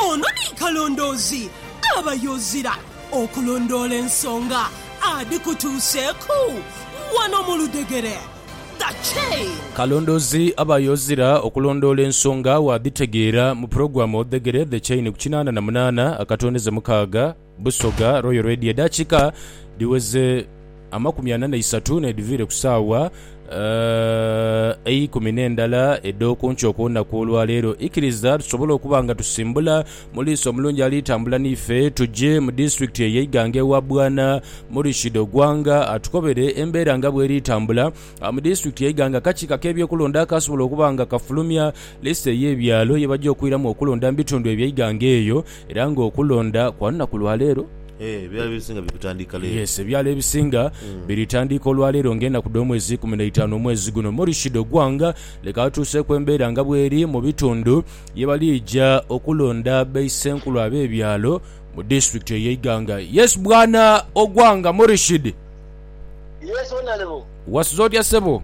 Ono ni kalondoozi aba yozira okulondoola ensonga adhikutuuseeku wano mu ludhegere. The Chain. Kalondoozi aba yozira okulondoola ensonga waadhitegeera mu pulogulaamu Odhegere The Chain ku kinaana na munaana akatondeze mukaaga. Busoga Royal Radio edakika dhiweze amakumi ana neisatu nedhiviire ku saawa eikumi nendala edhokunkyo kulunaku olwaleero. Ikiriza tusobole okuba nga tusimbula muliisa omulungi ali tambula niife tuje mu disitulikiti eye Iganga ewa Bwana Murishid Ogwanga atukobere embeera nga bweri tambula mu disitulikiti ye Iganga. Akakiiko akebyokulonda akasobola okuba nga kafulumya lisiti eyebyalo yebaja okwiramu okulonda mubitundu ebye Iganga eyo. Era nga okulonda kwa lunaku lwa leero. Eeh ebyalo ebisinga biri kutandika leero. Yes ebyalo ebisinga biri tandika olwa leero nga enaku dho mwezi ikumi na itaanu omwezi guno Morishi dho gwanga. Leka atuuseku embeera nga bweri mu bitundu ye balija okulonda baisenkulu abe byalo mu disitulikiti eye Iganga. Yes bwana Ogwanga Morishid. Yes honourable. Wasuze otya sebo?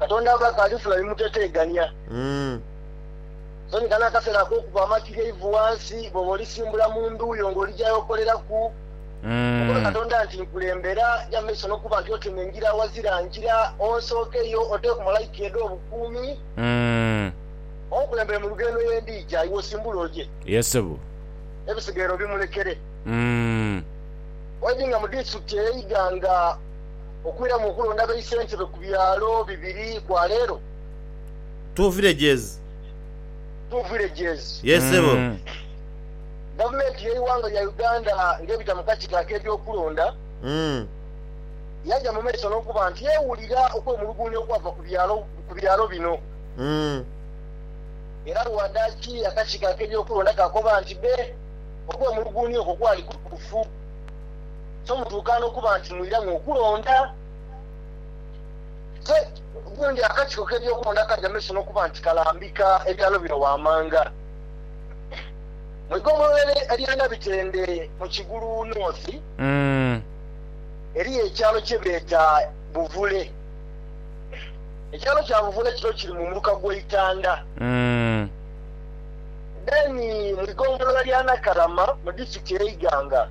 Katonda ava akaalifula bimuteteegania. Sonhika n'akaseera ak'okuba amatu ge ivu ghansi bw'oba olisimbula mu ndhu yo ng'oli gy'aye okoleraku. Mukobe Katonda nti, Nkulembera, ja mu maiso n'okuba nti otema engira aghazira ngira, onsookeyo, oteeku malaika ye edh'obukuumi, onkulembere mu lugendo ye ndiija, iwe osimbule oje. Ebisigaire obimulekere. Waidhinga mu disiturikiti ey'eighanga okwiramu okulonda baisentebe ku byalo bibiri kwa leero. Two villages. Two villages. Yes sebo. Gavumenti y'eighanga lya Uganda ng'ebita mu kakiiko ak'ebyokulonda yaja mu maiso n'okuba nti ewulira okwemulugunya okwava ku byalo bino era lwadaaki akakiiko ak'ebyokulonda kaakoba nti be okwemulugunya okwo kwali kutuufu. so mutuuka n'okuba nti mwiramu okulonda. Te gundi akakiiko k'ebyokulonda ka Jameson okuba nti kalambika ebyalo bino waamanga mu igombolola erya Nabitende mu Kigulu North, eriyo ekyalo kye beeta Buvule. Ekyalo kya Buvule kino kiri mu muluka gwa Itanda. Then mu igombolola lya Nakalama mu disitulikiti eye Iganga.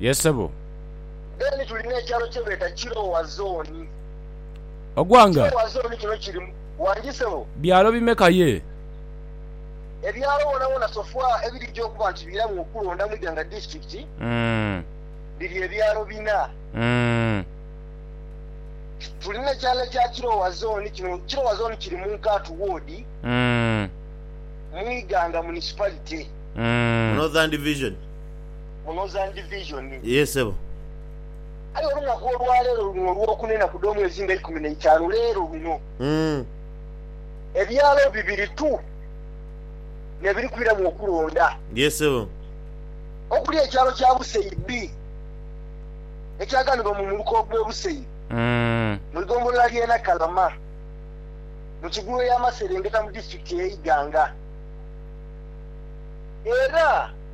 Ye sebo. Then tuli n'ekyalo kyebeeta Kirowa Zooni. Ogwanga. Kirowa Zooni kino kiri mu. Wangi sebo. Byalo bimeka ye? Ebyalo wonawona so far ebirija okuba nti biramu okulonda mu Iganga District biri ebyalo bina. Tuli n'ekyalo ekya Kirowa Zooni kino. Kirowa Zooni kiri mu Nkaatu Ward mu Iganga Municipality. Northern Division. mu Northern Division. Yee sebo. Aye olunaku olwaleero luno olwokuna enaku dh'omwezi nga ikumi n'eitaanu leero luno, ebyalo bibiri tu nebiri kwiramu okulonda. Yee sebo. Okuli ekyalo kya Busei B ekyaganibwa mu muluka ogwe Busei mu igombolola lye Nakalama mu kigulu ey'amaserengeta mu disitulikiti eye Iganga era.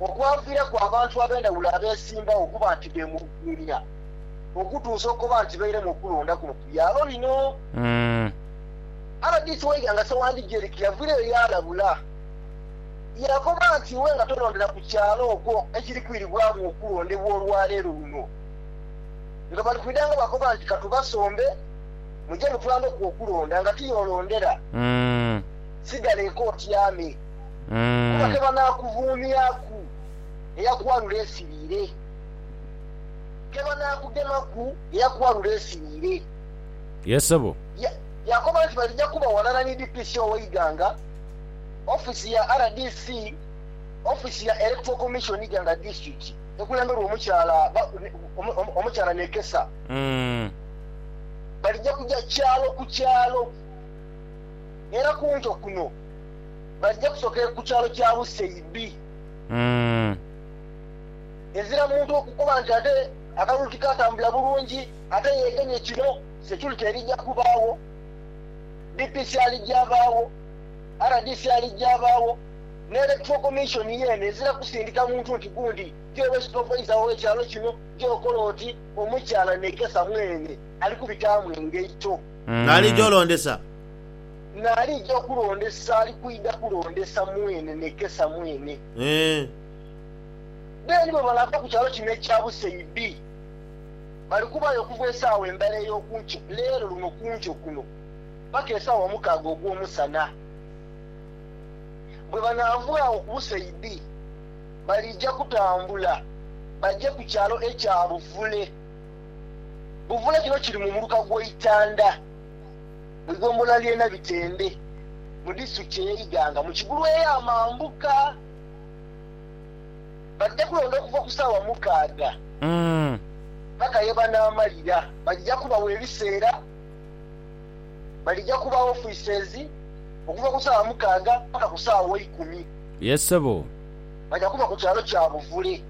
okwaviiraku abantu ab'endhawulo abeesimbawo okuba nti beemulugunya okutuusa okukoba nti bairemu okulonda kuno ku byalo bino. Rdc wa Iganga Ssewandhi Jerick yavirayo yaalabula yaakoba nti iwe nga tolondera ku kyalo okwo ekiri kwiribwamu okulondebwa olwaleero luno nga bali kwidha nga bakoba nti katubasombe muje mutwambeku okulonda nga ti y'olondera sigala eka otyame. kuba tebanaakuvuumyaku eyakughanula ensiriire, tebanaakugemaku eyakughanula ensiriire. Ye sebo. Ya, yaakoba nti balija kuba ghalala ni DPC ow'eighanga, ofiisi ya rdc, ofiisi ya Electoral Commission ighanga disitulikiti ekulemberwa omukyala ba, omukyala Nekesa. Balija kuja kyalo ku kyalo era ku nto kuno. Baja kusokera ku kyalo kya Buseibi. Ezira muntu okukoba nti ate akalulu tikatambula bulungi ate yeegemye kino, security erija kubaagho, DPC alija abaagho, rdc alija abaagho, ne Electoral Commission yeene ezira kusindika muntu nti gundi gy'obe supervisor w'ekyalo kino, gy'okola oti, omukyala Nekesa mweene ali kubitaamu engaito. Alija olondesa. N'alija okulondesa ali kwidha kulondesa mwene nekesa mwene. Beene bwe balaava ku kyalo kino ekya Buseibi, bali kubaayo okuva esaawa endhala ey'oku nkyo, leero luno ku nkyo kuno, paka esaawa mukaaga ogw'omusana. Bwe banaava agho ku Buseibi, baliija kutambula baje ku kyalo ekya Buvule. Buvule kino kiri mu muluka gw'eitanda. mu igombolola ly'e Nabitembe mu disitulikiti ey'e Iganga mu Kigulu eya mambuka. Badhija kulonda okuva ku saawa mukaaga paka ye banaamalira. Badhija kubagho ebiseera, badhija kubagho offices okuva ku saawa mukaaga paka ku saawa ikumi. Baja kuba ku kyalo kya Buvule.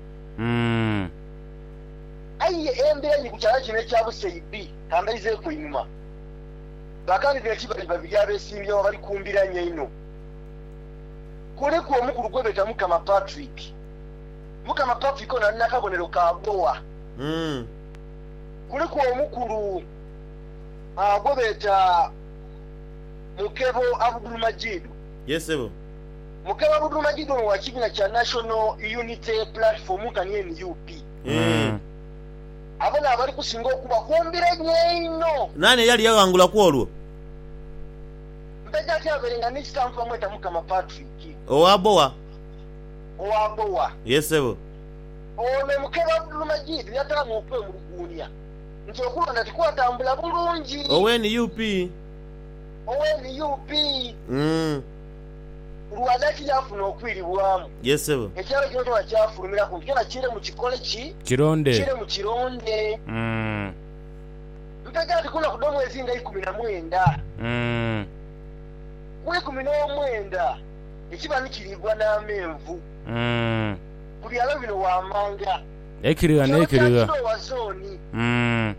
Aye embiranye ku kyalo kino ekya Busei B. Ka mbaizeeku einhuma. Bakali be Kibali babiri abeesimbyewo abali ku mbiranye einho. Kuliku omukulu gwe beeta Mukama Patrick. Mukama Patrick ono ali n'akabonero ka boa. Kuliku omukulu gwe beeta Mukebo Abudul Majidu. Yee sebo. Mukebo Abudul Majidu ono wa kibiina kya National Unity Platform nkani nup. Eeh. Abo n'abali kusinga okuba ku mbiranye einho. Naani eyali yaghangula ku olwo? Mpeta ati abeere nga ni sitampu bamweta Mukama Patrick. Owa Bowa? Owa Bowa. Ye sebo. Ono Mukebe Abdulmajid yataamu okwemuluguunia nti okulonda tikwatambula bulungi. Owe nup? Owe nup. Lwanda ki y'afuna okwiribwamu? Yes sebo. Ekyalo kino kyona kyafulumira ku nti kyona kiire mu kikole ki? Kironde. Kiire mu kironde. Mm. Ntegera nti ku lunaku dh'omwezi nga eikumi na mwenda. Mm. Ku eikumi n'omwenda ekiba ni kiriigwa n'amenvu. Mm. Ku byalo bino waamanga. Ekirigha Mu kyalo kya n'ekirigha. Kiroowa Zooni. Mm.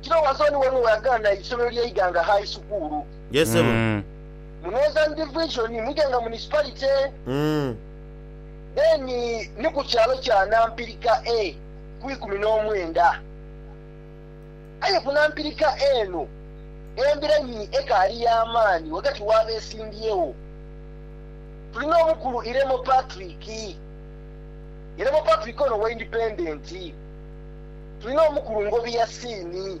Kiroowa Zooni ghaligho we yagana eisomero lya Iganga High Sukuulu. Yes sebo. Mm. mu Northern Division mwidhe nga municipality then ni ku kyalo kya Nampirika A ku ikumi n'omwenda. Aye ku Nampirika A eno embiranyi ekaali ya maani ghagati w'abesimbyewo. Tuli n'omukulu Iremo Patrick, Iremo Patrick ono wa Independent. Tuli n'omukulu Ngobi Yasin.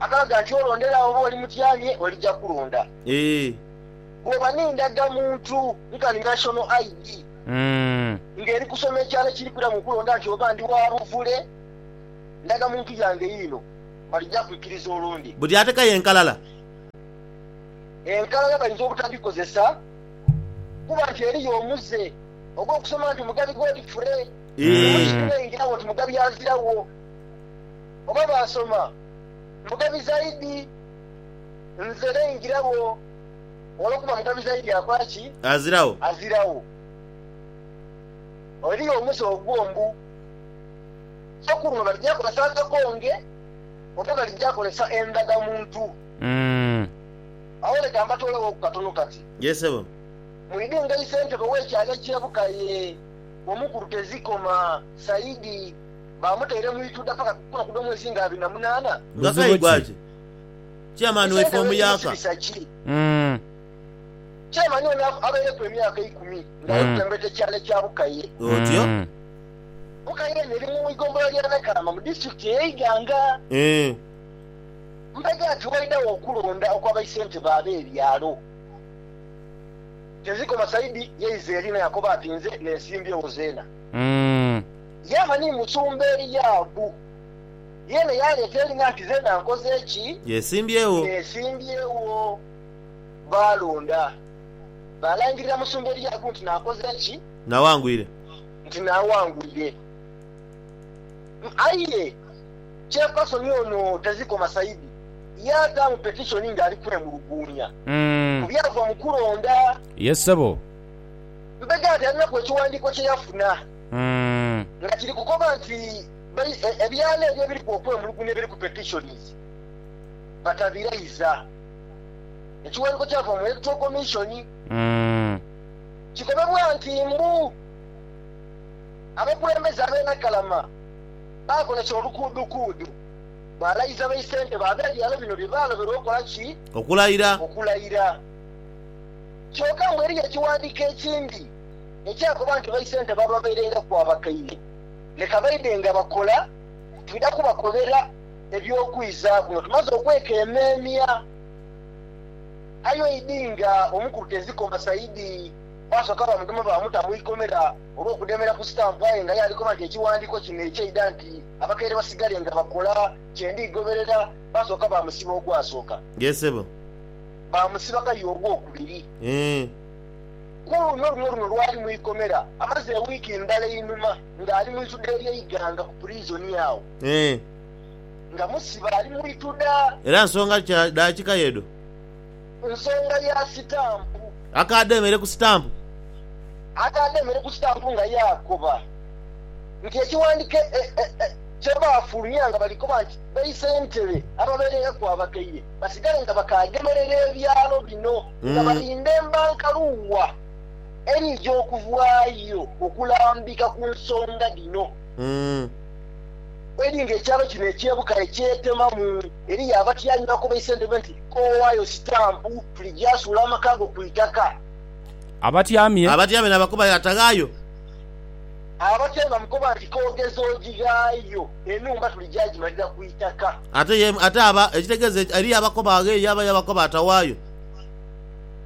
Akalaga nti olwo ndere agho bw'oli mutyamye olija kulonda. Bw'oba n'endagamuntu nkani National ID nga eri kusoma ekyalo ekiri kwiramu okulonda nti oba ndi wa buvule, ndagamuntu yange yiino, balija kwikiriza olonde. Buli atekayo enkalala. Enkalala bayinza obutadhikozesa kuba nti eriyo omuze ogw'okusoma nti Mugabi Godfrey, oba ekiri n'eyingiragho nti Mugabi aziragho. oba baasoma mugabi zaidi nze naingiragho olwokuba mugabi zaidi akola ki? Aziragho. Aziragho. Eriyo omuze ogwo mbu so kuno balija kozesa akakonge oba balija kozesa endhaga muntu. Agho leka mbatoolaghoku katono kati. Yee sebo. Mwidhi nga isentebe w'ekyalo eky'e Bukaye, Omukulu Tezikoma Saidi. Baamuteire mu ituda paka kukula kudho mwezi nga abiri na munaana. Buzibu ki? Chairman waife omuyaka. Umm. Chairman ono abaireku emyaka eikumi nga ali kutembeeta ekyalo kya Bukaye. Otyo. Bukaye eno eri mu igombolola lya Nakalama mu disitulikiti eye Iganga. Eeh. Mpagi ati waidagho okulonda okwa baisentebe abe byalo, tezikoma saidi ye izeeri naye akoba ati nze nensimbyewo zeena. Umm. Yaava ni musumba Eliabu, yeena yaaleeta eri nga nti, Zeena nkoze ki? Yesimbyewo. Neesimbyewo. Baalonda. Baalangirira musumba Eliabu nti naakoze ki? Naawangwire. Nti naawangwire. Aye kyepason ono tazikoma saidi, yaataamu petishoni ng'ali kwemuluguunya ku byava mu kulonda. Ye ssebo. Mbega nti alinaku ekiwandiiko kye yafuna. nga kiri kukoba nti ebyalo ebyo ebiriku okwemulugunya ebiriku petitions batabiraiza. Ekiwandiiko kyava mu Electoral Commission kikobebwa nti mbu abakulembeze ab'e Nakalama baakozesa olukuudukuudu balayiza baisentebe ab'ebyalo bino bye baaloberwa okola ki? Okulayira. Okulayira. Kyoka mbu eriyo ekiwandiiko ekindi. Ekyakuba nti baisente baababairengaku abakaire, leka baidhe nga bakola, twidha kubakobera eby'okwizaaku nga tumaze okwekemeemya. Aye oidi nga omukulu tezikoma Saidi, baasooka baamugema baamuta mu ikomera olw'okudemera ku sitampu aye nga ye ali koba nti ekiwandiiko kino ekyaidha nti abakaire basigale nga bakola kye ndigoberera, baasooka baamusiba ogwasooka. Yee ssebo. Baamusiba kaye ogwokubiri. Yee. Ku luno luno luno lwali mu ikomera amaze ewiiki ndala einhuma ng'ali mu ituda ery'eighanga ku purizoni agho. Nga musibe ali mu ituda. Era nsonga ki daakika y'edho? Nsonga ya sitampu. Akaadha emere ku sitampu. Akaadha emere ku sitampu nga yaakoba nti ekiwandhiko kye baafulumya nga bali koba nti baisentebe ababeereiraku abakaire basigale nga bakaagemerera ebyalo bino. nga bali mbemba nkalu wa edhija okuvaayo okulambika ku nsonga dhino edhi nga ekyalo kino eky'e Bukale kyetemamu. Eriyo abatyaime bakobeisa entebe nti, Kowaayo sitampu, tuli gyasuula amakaago ku itaka. Abatyaime. Abatyaime n'abakubayo ataghaayo. Abatyaime bamukoba nti, K'ogeze ojighaayo, enhumba tuli gyajimalira ku itaka. Ate ye, ate aba, ekitegeeza eki, eriyo abakoba aghe ye aba yabakoba atawaayo?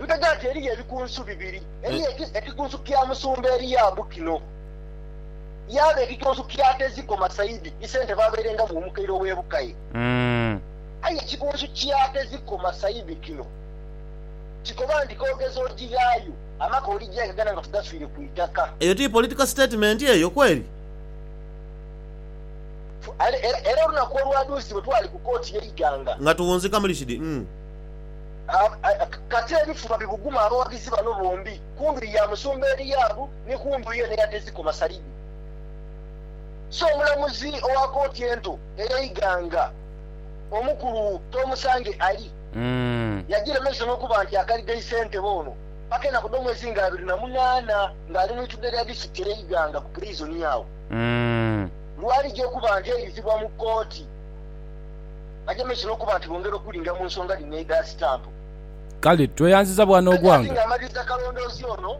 Ntega nti eriyo ebikunsu bibiri, eriyo eki, ekikunsu kya musumba Eliabu kino, yaaba ekikunsu kya Teziko Masaidi, ise ntebe abairengamu omukaire ow'ebukaye. Aye ekikunsu kya Teziko Masaidi kino, kikoba nti, K'ogeze ojighaayo. Amaka oligya e Uganda nga tugafiire ku itaka. Eyo ti political statement eyo kweri? Era olunaku olwadhuusibwa twali ku kooti ye Iganga. Nga tuwunzika mu lishidi umm. Kati ebifuba bibuguma abawagizi bano bombi ku ndhuyi ya Musumba Eliabu ni ku ndhuyi eno eya Teziko Masalidi. So omulamuzi owa kooti ento eye Iganga omukulu Tomusange Ali. Yagiremesa olw'okuba nti akaliga isentebe ono paka enaku dh'omwezi nga abiri na munaana ng'ali mu itudhe lya disitulikiti ey'e Iganga ku puliizoni agho lw'alija okuba nti aidhizibwa mu kkooti. Bagemesa olw'okuba nti bongera okulinda mu nsonga dhino edha sitampu. Kale tweyanziza bwa Nogwanga. Ghagati nga amaliriza kalondoozi ono,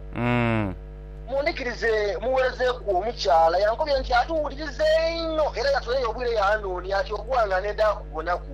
mu ndhikirize muwerezeeku omukyala yankobye nti atuwuliriza einho era yatoleyo obwire yaanoonia ati Ogwanga nendha kubonaku.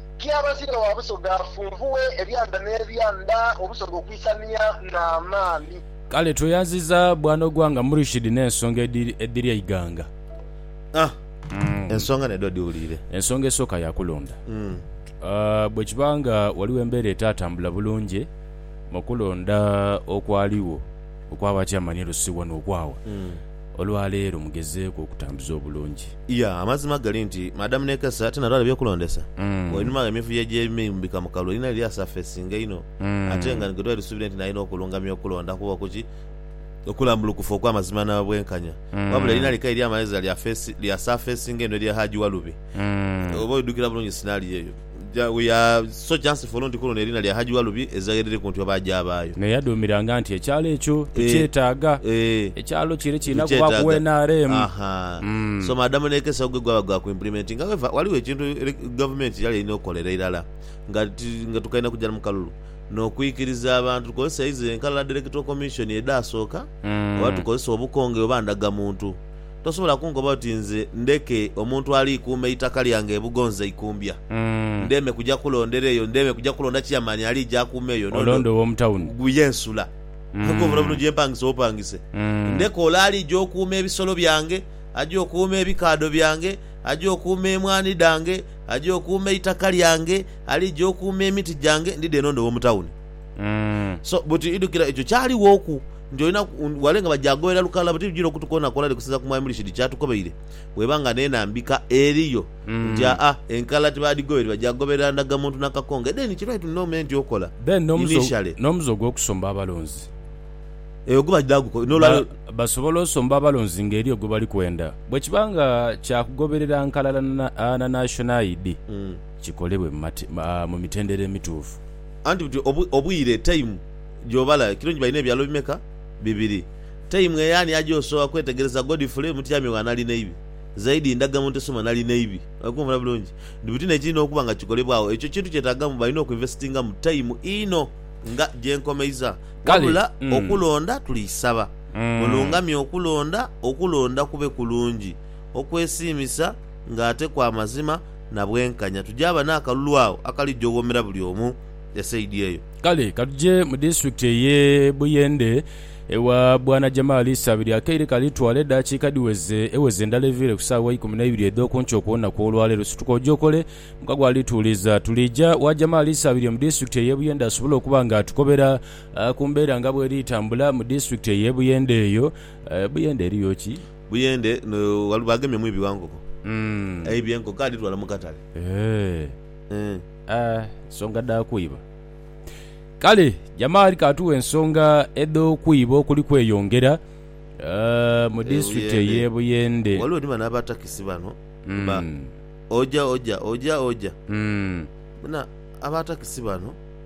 Kyabazinga wa Busoga afunvughe ebyanda n'ebyanda Obusoga okwisania n'amaani. Kale tweyanziza Bwana Ogwanga Murishid n'ensonga edhiri eighanga. Ahh. Ensonga nedho dhiwuliire. Ensonga esooka ya kulonda. Bwekiba nga waliwo embeera etaatambula bulungi mu kulonda okwaligho okwa ba Chairman e Lusi wano okwawa, Olwa leero mugezeeku okutambuza obulungi. Iya, amazima gali nti Madam Nekesa tinalwala by'okulondesa. Wainuma gh'emivuyo egy'ebimeimubika mu kalulu erina liri asafesinga inho ate nga ni gwe twali tusuubire nti nalina okulungamya okulonda kuba ku ki okulambulukufu okw'amazima n'obwenkanya wabula erina likaire lya magheeza lya asafesinga inho erya Hajji Walubi. Oba oidhukira bulungi sinaaliyo eyo. We are so chancefull nti kuluno eriina lya Hajji Walubi ezira gheriri ku ntyo baagyabaayo. Me yadhumiranga nti ekyalo ekyo tukyetaaga. Ekyalo kire kirina kubaaku we nrm. So Maadamu n'ekesa ogughe gwaba gwa ku implementinga. However, ghaligho ekintu Gavumenti kyeyali erina okukolera irala nga tukaidha kugya mu kalulu n'okwikiriza abantu tukozese eizo enkalala dh'Electoral Commission edhaasooka oba tukozese obukonge oba ndagamuntu. Tosobola kunkoba oti nze ndeke omuntu aliikuuma eitaka lyange e Bugonza Ikumbya. Ndeme kuja kulondera eyo, ndeme kuja kulonda Chairman aliija akuume eyo. Nondo gu ye nsula. Nkobula buno gye mpangisa opangise. Ndeke ole aliija okuuma ebisolo byange, aje okuuma ebikaadho byange, aje okuuma emwaani dhange, aje okuuma eitaka lyange, aliija okuuma emiti gyange, ndidhe nondo w'omu tawuni. Mm. So buti idhukira ekyo kyalighooku nti olina wale nga bajagoera lukala buti bijira okutukoonakona likusinza ku Mwami Murishid kyatukobeire bweba nga n'enambika eriyo Mm. nti aa enkala tibadhigoeri bajagoberera ndagamuntu na kakonge then kiri right n'ome nti okola Then n'omuze initially n'omuze ogw'okusomba abalonzi. Eyo guba dha guko Ba, n'olwalero basobola osomba abalonzi nga eriyo gwe bali kwenda. Bwekiba nga kya kugoberera nkalala na, na, na National ID, Mm. kikolebwe mu mate, mu, mu mitendera emituufu. Anti buti obwi, obwire, time, gy'obala ekiro nti balina ebyalo bimeka? Bibiri. Time eyo ani aja osooka kwetegereza? Godfrey, mutyami wa Nalineibi. Zaidi, ndaga mu nteso mwa Nalineibi. Oli kunvuna bulungi? Nti buti n'ekirina okuba nga kikolebwagho. Ekyo kintu kyetaagamu, balina okwinvestingamu time inho. Nga gye nkomeiza. Kale. Wabula, Mm. okulonda, tuliisaba mulungamye okulonda, okulonda kube kulungi, okwesiimisa, nga ate kwa mazima. na bwenkanya, tujaaba n'akalulu agho akalija oghomera buli omu esaidi eyo. Kale ka tuje mu disiturikiti ey'e Buyende, ewa Bwana Jamal Isabirye. Akaire kali twala edaakiika dhiweze eweze ndala eviire ku saawa ikumi na ibiri edh'oku nkyo ku lunaku olwaleero. Situka oje okole, mukago ali tuwuliza. Tuliija wa Jamal Isabirye mu disiturikiti ey'e Buyende asobole okuba nga atukobera ku mbeera nga bweri tambula mu disiturikiti ey'e Buyende eyo. Buyende eriyo ki? Buyende no Waluba agemye mwibi wa nkoko. Aibye enkoko adhitwala mu katale. Eeh, ensonga dha kwiba. Kale Jamaali k'atuwe ensonga edh'okwiba okuli kweyongera mu disitulikiti ey'e Buyende. Waliwo ni bano aba takisi bano ba oja oja, oja oja. Bona aba takisi bano.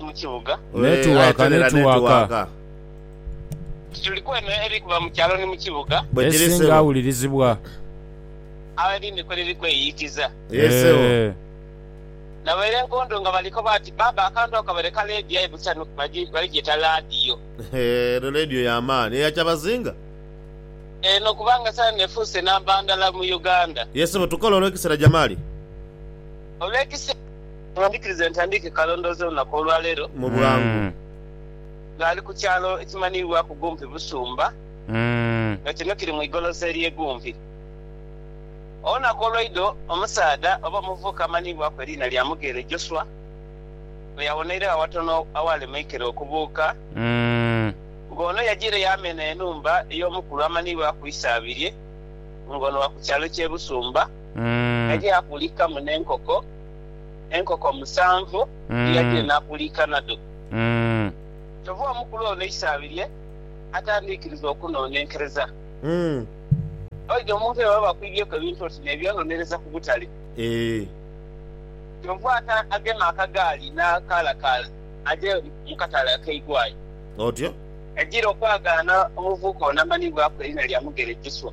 mu kibuga. Netiwaka, netiwaka. Nti tuli kwemera eri kuva mu kyalo ni mu kibuga. Esinga awulirizibwa. Agho erindi kwe liri kweyiikiza. Yee ssebo. Nabaire nkondo nga baliko bati, Baaba akantu ako kabaire ka leediyo aye busa no baligyeta laadiyo. Eno leediyo ya maani. Eya kyabazinga? Eno kubanga saano efuuse namba ndala mu Uganda. Yee ssebo, tukola olw'ekiseera Jamali. Olw'ekisa kye ndikiriza entandiike kalondoozi olunaku olwa leero. Mu bwangu. Ng'ali ku kyalo ekimanhiibwaku Gumpi Busumba, nga kino kiri mu igolosa ery'e Gumpi. Olunaku olwaidho omusaadha oba omuvubuka amanhiibwaku eriina lya Mugeere Joshua, bwe yawoneiregho awatono awaali mu ikere okubuuka, ng'ono yajiire yaamena enhumba ey'omukulu amanhiibwaku Isaabirye, ng'ono wa ku kyalo ky'e Busumba. Yali akulika mu n'enkoko, enkoko musanvu dhe yali enaakuliika nadho. Kyova omukulu ono eisabi lye atandiikiriza okunoonenkereza. Oidha omuntu bwe baba bakwibyeku ebintu oti n'ebyononereza ku butale. Kyova agema akagaali n'akaalakaala aje mu katale akeigwayo. Yajira okwagaana omuvubuka ono amanhibwaku eriina lya Mugere Joswa.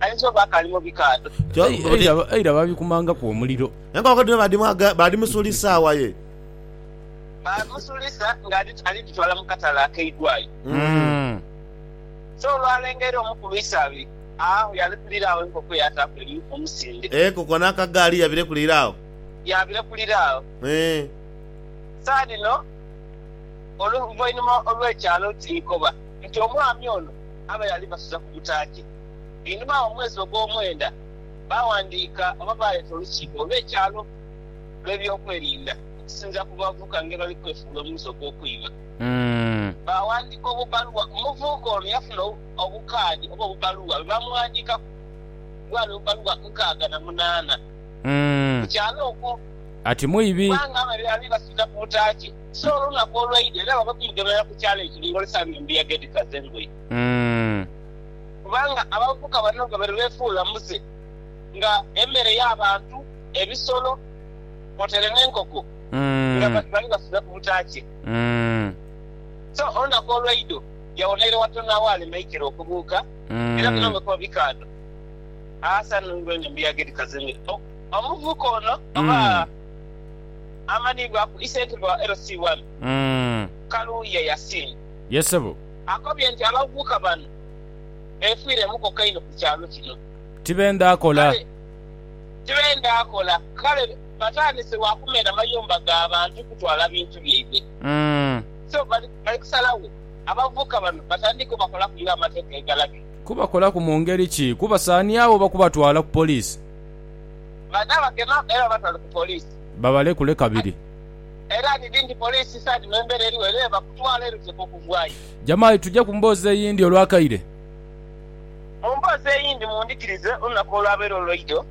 Ayinza oba akaali mu bikaadho. Eira baabikumangaku omuliro. Enkoko dhino baadhimusuulisa saawa ye? Baamusuulisa ng'ali dhitwala mu katale akeidhwayo. So olwalengera omu ku lwisaabiri agho yalekulira agho enkoko yaataaku elimu omusinde. Enkoko n'akagaali yabirekulira agho? Yabirekulira agho. Saagha dhino oluvainhuma olw'ekyalo ti nkoba nti omwami ono. Abayo alibasuza ku butaaki. Einhuma agho mu mwezi ogw'omwenda, baawandiika oba baaleeta olukiiko olw'ekyalo olw'eby'okwerinda okusinziira ku bavubuka ngeri bali kwefuula omuze ogw'okwima. Baawandiika obubbaluwa. Omuvubuka ono yafuna obukaadi oba obubbaluwa bwe baamughandiikaku bwali obubbaluwa nkaaga na munaana ku kyalo okwo. Ati mwibi. Kubanga abayo alibasuza ku butaaki. So olunaku olwaidha era baba kumugemera ku kyalo ekiri ng'olesamu embuyaga edhikaze engoye. Kubanga abavubuka bano babaire beefuula muze nga emere y'abantu, ebisolo kwotaire n'enkoko nga bali bafunhe ku butaakye. So olunaku olwaidho yawonaire watono agho aleme aikire okubuuka, era bino nga kuba bikaadho aasana olw'eno embuyaga edhikaze engoye. Omuvubuka ono oba. amanhibwa ku isentebe wa LC One, Kaluuya Yasin, akobye nti abavubuka bano beefiire mukoka inho ku kyalo kino kale tibenda kola kale batandise lwa kumena mayumba ga bantu kutwala bintu byaibwe so bali kusalagho abavubuka bano batandike obakolaku nga amateeka bwe galagira. Kubakolaku mu ngeri ki? Kubasaanyawo oba kubatwala ku poliisi? Banaabagema era babatwale ku poliisi. Babalekule kabiri. Era dhidhi nti poliisi isaani mu embeera eriwo era ebakutwala era oteekwa okuvaayo. Jamai, tuje ku mboozi eyindi olwakaire. Mu mboozi eyindi, mundhikirize olunaku olwabaire olwaido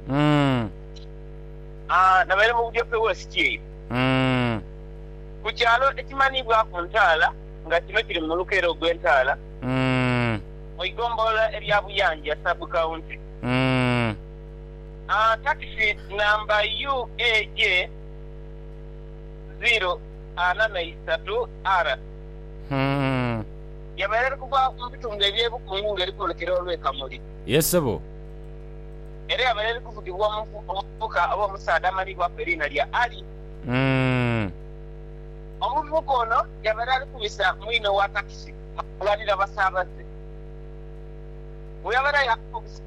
nabaire mu Budyope West eyo ku kyalo ekimanhiibwaku Ntaala nga kino kiri mu muluka era ogw'e Ntaala mu igombolola erya Buyanja Sub County. Takisi namba UAJ ziro ana na isatu R yabaire eri kuva mu bitundu eby'e Bukungu nga eri kwolekera olw'e Kamuli. Era yabaire eri kuvugibwa omuvubuka oba omusaadha amanhibwaku eriina lya Ali. Omuvubuka ono yabaire ali kubisa mwine owa takisi ghalighanira basaabaze. Bwe yabaire aye akubisa.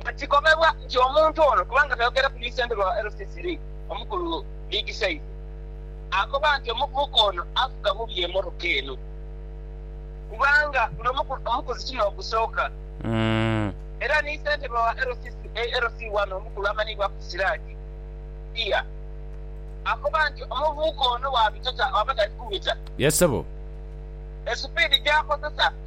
Nga kigobebwa nti omuntu ono, kubanga twayogera ku ni sentebe wa LCC Lee, Omukulu Big Size akoba nti omuvubuka ono avuga bubi emotoka eno kubanga guno mukuzi ti n'ogusooka era ni sentebe wa LCC ALC wano Omukulu amanhibwaku Siraji Iya akoba nti omuvubuka ono bwabita taa aba tali kubita esupidi gyakozesa.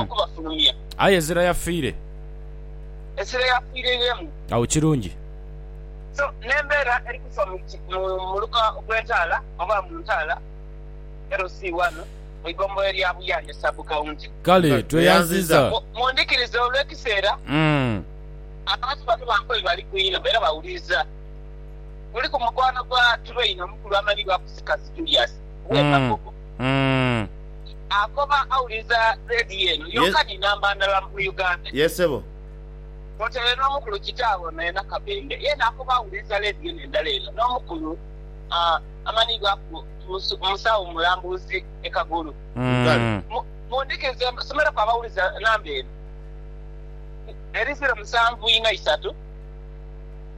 okubafulumya. Aye Ezira yafiire. Ezira yafiiriremu. Agho kirungi. So, n'embeera eri kufa mu muluka gw'entaala oba mu ntaala LC ghano mu igombolola lya Buyanja Sub County. Kale, tweyanziza. Mundhikirize olw'ekiseera. Abantu bano bange oyo bali ku inho era bawuliriza. Kuliku mukwano gwa Train omukulu amanyibwaku Sikazi Julius, ow'e Kagogo. Akoba awuliza Radio eno yoka ni namba ndala mu Uganda. Yes sebo. Kwotaire n'omukulu kitaawe ono yena Kabembe yena akoba awuliza Radio n'endala eno n'omukulu amanhibwaku Musawo Mulambuzi e Kagulu. Kale. Mundhikize nsomereku abawuliza namba eno eri ziro musanvu inha isatu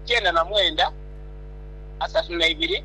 kyenda na mwenda asatu na ibiri.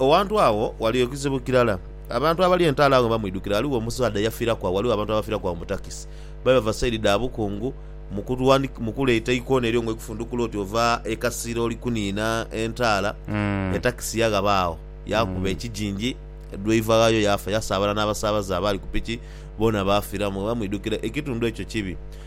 Awantu agho ghaligho ekizibu kirala. Abantu abali entaalo agho bamwidhukira. Ghaligho omusaadha eyafiraku agho, ghaligho abantu abafiraku agho mu takisi. Babe bava saidi dha bukungu, mu kuleeta eikona eryo ng'olikufundhukula oti ova e Kasira oli kuniina entaala, etakisi yaghaba agho yaakuba ekijinji, dwaiva ghaayo yaafa. Yasaabala n'abasaabaze abaali ku piki boona baafiramu. Bamwidhukira. Ekitundu ekyo kibi.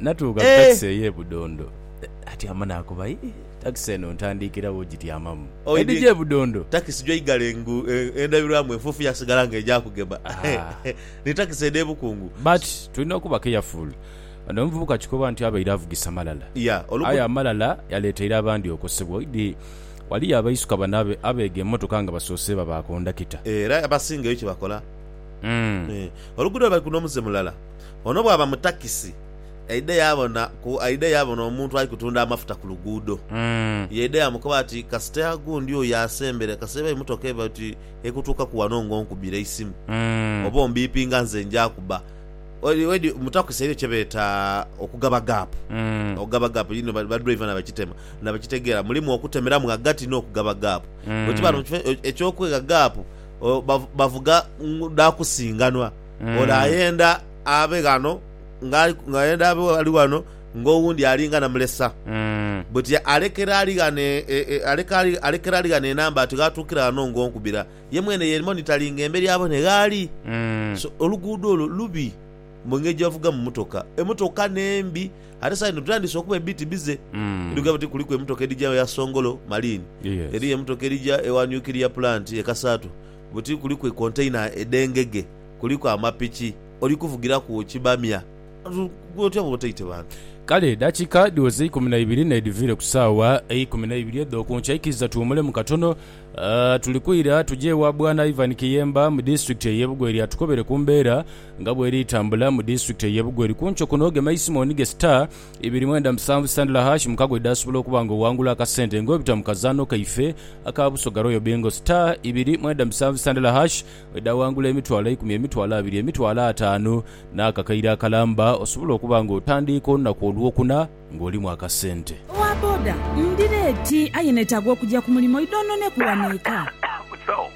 Natuuka ku takisi ey'e Budondo. Atyama naakoba, Hi, takisi eno ntandiikira wo gityamamu. Edhija e Budondo. Takisi gy'oigala engu endabirwamu enfuufu yaasigala nga egya kugema. Ni takisi edh'e Bukungu. But tulina okuba careful. Ono omuvubuka kikoba nti abaire avugisa malala. Aye amalala yaleeteire abandi okosebwa. Oidhi waliyo abaisuka bano abeega emotoka nga basoose baba kondakita. Era abasinga eyo kye bakola. Oluguudo lwe bali ku n'omuze mulala. Ono bwaba mu takisi aidhe yaabona ku aidhe yaabona omuntu ali kutunda amafuta ku luguudo. Yaidha yaamukoba ati, Kasita gundi oyo asembera, kasita eba emotoka eba oti ekutuukaku wano ng'onkubira eisimu oba ombiipinga nze nja kuba. Wedi, mu takisi eriyo kye beeta okugaba gaapu. Okugaba gaapu yino baduraiva nabakitema nabakitegeera. Mulimu okutemeramu ghagati n'okugaba gaapu. Bwe kiba mu kifo eky'okwegha gaapu bavuga dha kusinganwa. Ole ayenda abe ghano nga ayenda abe ali ghano ng'owundi alinga na mulesa. Buti alekera ali ghano alekera ali ghano enamba ati gh'atuukira ghano ng'onkubira. Ye mwene yeerimo ni tali ng'emberi abone gh'ali. So, oluguudo olwo lubi mu ngeri gye bavugamu mmotoka. Emmotoka n'embi. Ate esaa dhino tutandise okuba ebiti bize. Edhugamba oti kuliku emmotoka edhija ewa Songolo, Malini. Eriyo emmotoka edhija ewa Nuclear Plant e Kasaato. Buti kuliku ekontaina edh'engege, kuliku amapiki, oli kuvugiraku ki bamya? Gwe otya bw'oba otaite bantu? Kale edakika dhiweze eikumi na ibiri n'edhiviire ku saawa eikumi na ibiri edh'oku nkya. Ikiriza tuwumulemu katono. Tuli kwira tuje ewa Bwana Ivan Kiyemba mu disitulikiti ey'e Bugweri atukobere ku mbeera nga bw'eri tambula mu disitulikiti ey'e Bugweri. Ku nkyo kuno gema eisimu onige star ibiri mwenda musanvu sandula hash mukago edhasobola okuba nga owangula akasente nga obita mu kazaanho kaife aka Busoga Royal Bingo. Star ibiri mwenda musanvu sandula hash edha wangula emitwalo eikumi, emitwalo abiri, emitwalo ataanu n'akakaire akalamba osobole okuba nga otandiika olunaku olwokuna nga olimu akasente. Owa boda, Ndi reeti aye netaaga okugya ku mulimo idhonhoneku wano eka.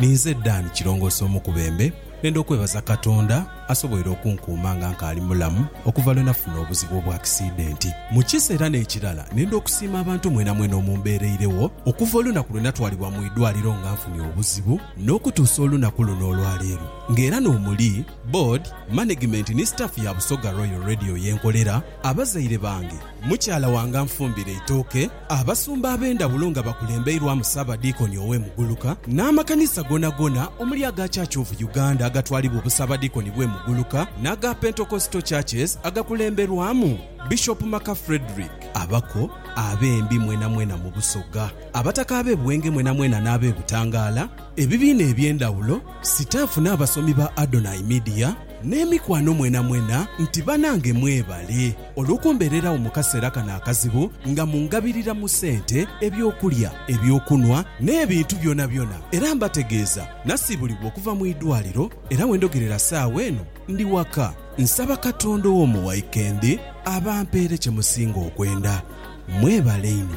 Ninze Dan Kirongoose Omukubembe, nenda okwebaza Katonda asoboire okunkuuma nga nkaali mulamu okuva lwe nafuna obuzibu obw'akisidenti mu kisa era n'ekirala nenda okusiima abantu mwenamwena omumbeereiregho okuva olunaku lwe natwalibwa mu idwaliro nga nfunye obuzibu n'okutuusa olunaku luno olwaleero nga era n'omuli Board, Manegimenti ni Staff ya Busoga Royal Radio yenkolera, abazaire bange, mukyala wange anfumbira eitooke. Abasumba ab'endhawulo nga bakulembeirwamu Ssaabadiikoni ow'e Muguluka n'amakanisa goonagoona omuli aga Church of Uganda agatwalibwa Obussaabadiikoni bw'e Muguluka n'aga Pentecostal Churches agakulemberwamu Bishop Maka Fredrick. Abako, Abembi mwenamwena mu Busoga, Abataka ab'e Bwenge mwenamwena n'ab'e Butangaala, ebibiina eby'endhawulo, sitaafu n'abasomi ba Adonai Media n'emikwano mwenamwena nti banange mwebale. Olw'okumbeererawo mu kaseera kano akazibu nga mungabirira mu sente, eby'okulya, eby'okunhwa, n'ebintu byonabyona, era mbategeeza nasiibulibwa okuva mu idwaliro era we ndogerera saawa eno ndi waka, nsaba Katonda ow'omu wikendi abampeere kye musinga okwenda. Mwebale inho.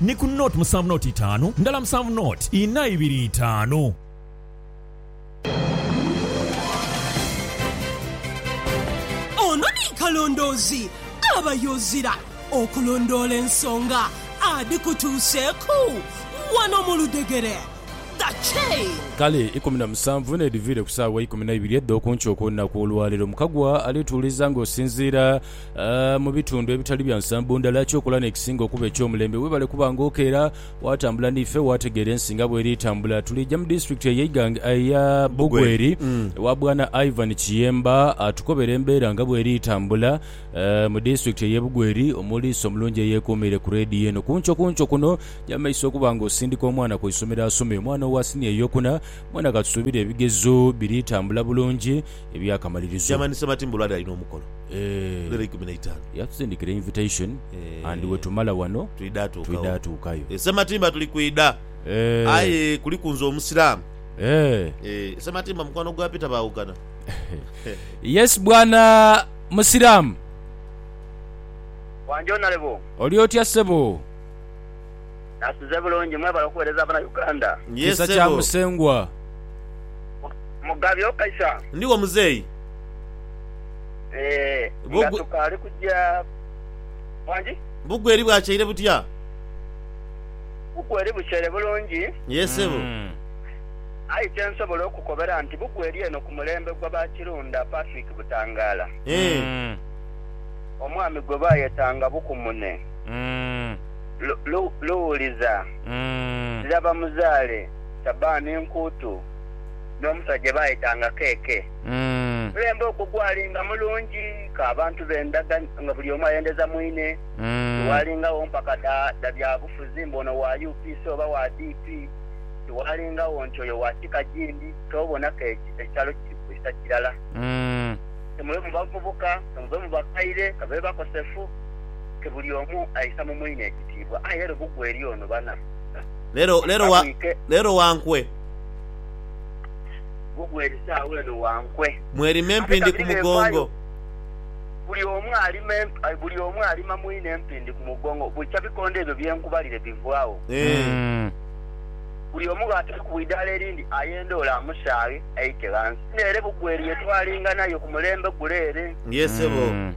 Ni ku nought musanvu nought itaanu ndala musanvu nought inha ibiri itaanu. Ono ni kalondoozi aba yozira okulondoola ensonga adhikutuuseeku wano mu ludhegere. The Chain. Kale ikumi na musanvu n'edhiviire ku saawa ikumi na ibiri edh'okunkyo okw'olunaku olwaleero, Mukagwa alituuliza ng'osinziira. mu bitundu ebitali bya nsambo ndala. Eky'okola n'ekisinga okuba eky'omulembe, webale kuba nga okeera waatambula n'ife waategeera ensi nga bw'eri etambula. Tuliija mu disitulikiti eye Iganga eya Bugweri ewa Bwana Ivan Kiyemba atukobere embeera nga bw'eri etambula mu disitulikiti eye Bugweri omuliisa omulungi eyeekuumiire ku leediyo eno. Ku nkyo ku nkyo kuno nyamisa okuba nga osindika omwana ku isomero asome. Omwana owa siniya ey'okuna mwena katusuubire ebigezo biri tambula bulungi eby'akamalirizo. Chairman Ssebatimba olwali alina omukolo. Eeh. Yatusindikira invitation and wetumala wano twidha tuukayo. E Sematimba tuli kwidha aye kuliku nze omusiramu. Eeh Sematimba mukwano gwa Peter bawogana. Yes bwana musiramu. Wanjoonalebo. Oli otya ssebo. Nasize bulungi mwebale okuwereza bana Uganda. Yee Kisa kya sebo. Musengwa. Mugabi okaisa. Ndiwo muzeeyi. Eeh Bwo nga gwe. tukaali kugya Wangi? Bugweri bwakyaire butya? Bugweri bukyaire bulungi. Yee sebo. Uhmm. Aye kyensobola okukobera nti bugweri eno ku mulembe gwa ba Kirunda Patrick Butangala. Eeh. Uhmm. Omwami gwe bayetanga Bukumune. Uhmm. Lu, lu, luwuliza. Ndira bamuzaale Sabani enkuutu, n'omusaja gye baayetanga Keeke. Mulembe ogwo gwali nga mulungi ka abantu beendaga nga buli omu ayendeza mwine. Tiwaalingagho mpaka dha, dha byabufuzi mbu ono wa UPC oba wa DP. Tiwaalingagho nti oyo wa kika gindi. Ky'obona ke, ekyalo kiri kwisa kirala. Ke mube mu bavubuka, ke mube mu bakaire, ka babe bakosefu. ti buli omu aisa mu mwine ekitiibwa. Aye lubu gwe eri ono bana. Lero, lero wa, Bamwite. lero wa nkwe. Lubu gwe eri saagho eno wa nkwe. Mwerime Ate empindi ku kabiri mugongo. n'envaayo. Buli omu alima emp, ai, buli omu alima mwine empindi ku mugongo. Bwikya bikondo ebyo bye nkubalire bivaagho. Eeh. Mm. Buli omu bw'atali ku idaala erindi ayenda ole amusaaghe aite ghansi. Nere bugwe eri ye twalinga nayo ku mulembe gule ere. Yee, sebo. Mm.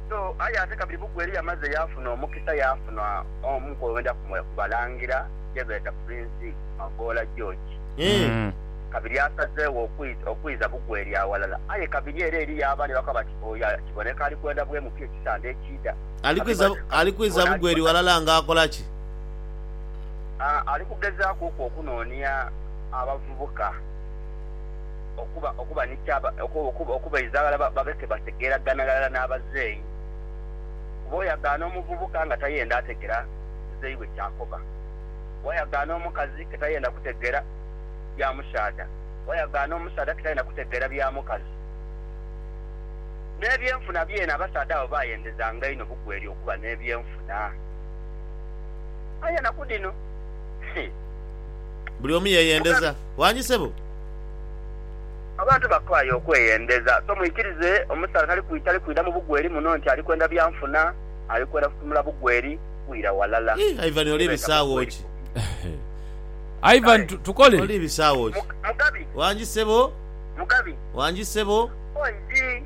So, aye ate kabiri buku eri yamaze yaafuna omukisa yaafuna omu kwebenda kumwe ku balangira ye beeta Prince Magoola George. Eeh. Kabiri asazeegho okwidha okwidha buku eri aghalala. Aye kabiri era eriyo abandi abakoba bati oyo kiboneka ali kwenda bwemu pi ekisande ekiidha. Ali Kabiri kwidha bati ali kwidha buku eri bwon'alikota. ghalala nga akola ki? Aah ali kugezaaku ku okunoonia abavubuka. okuba okuba ni kya okuba okubaidha ghala babe ke bategeeragana ghalala n'abazeeyi. Kuba oyagaana omuvubuka nga tayenda ategera muzeeyi we ky'akoba. Wayagaana omukazi ke tayenda kutegeera bya musaadha, wayagaana omusaadha ke tayenda kutegeera bya mukazi. N'ebyenfuna byene abasaadha abo baayendezanga inho bugweri okuba n'ebyenfuna. Aye enaku dhino, hii. Buli omu yeeyendeza. Wangi sebo. Abantu bakooye okweyendeza, so mwikirize omusaadha tali kwita ali kwidha mu bugweri muno nti ali kwenda bya nfuna, ali kwenda kutunula bugweri kwira walala. Ii, Ivan oli bisaawo ki? Eeh. Ivan Kale. Tukole? Oli bisaawo ki? Mu, Mugabi. Wangi ssebo? Mugabi. Wangi ssebo? Oidhi,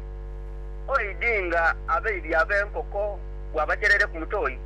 oidhi nga abaidhi ab'enkoko bw'abajerere ku mutoyi.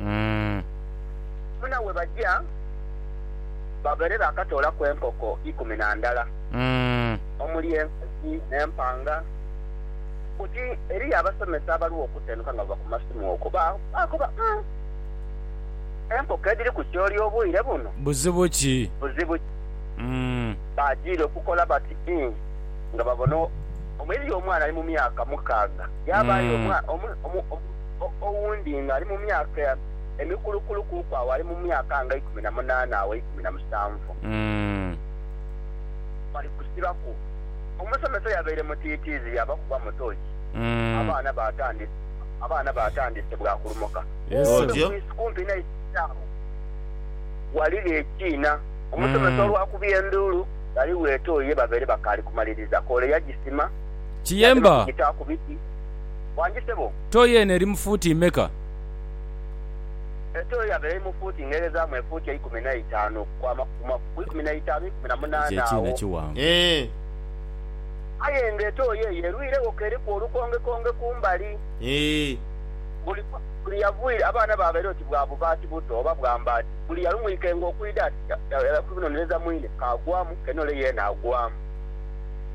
Umm. Muna we baja babaire baakatoolaku enkoko ikumi na ndala, omuli enkazi n'empanga. Buti eriyo abasomesa abaruwo okutenuka nga bava ku masimu okwo, baakoba, Umm! Enkoko edhiri ku kyooli obwire buno? Buzibu ki? Buzibu ki? Umm. Baajiira okukola bati ii nga babona. Omuyizi omwana ali mu myaka mukaaga yaabaayo. owundi nga ali mu myaka emikulukulu kuku agho ali mu myaka nga eikumi na munaana agho eikumi na musanvu. Bali kusibaku. Omusomesa yabaire mutiitiizi yaabakuba mu tooki, abaana baatandise abaana baatandise bwa kulumuka. Kumpi ku isi kumpi n'eisomero agho ghaligho ekiina. Omusomesa olwakubye enduulu, ghaligho etoyi ye babaire bakaali kumaliriza koole yagisima yadema kugita ku biti. Wangi sebo. Tooyi eno eri mu fuuti mmeka? Etooyi yaba eri mu fuuti ng'eghezamu efuuti eikumi n'eitaanu okukwama ku kumaku ku ikumi n'eitaanu, ikumi na Ekyo munaana ekiina agho. kiwanvu. Eeh. Aye nga etooyi eyo erwiregho k'eriku olukongekonge ku mbali. Eeh. Buli buli yavwire, abaana baabaire oti bwa bubaati buto oba bwa mbaati. Buli yalumwikenga okwidha ati, ya, ya, yakunonereza mwine, k'agwamu, k'enoole yeena agwamu.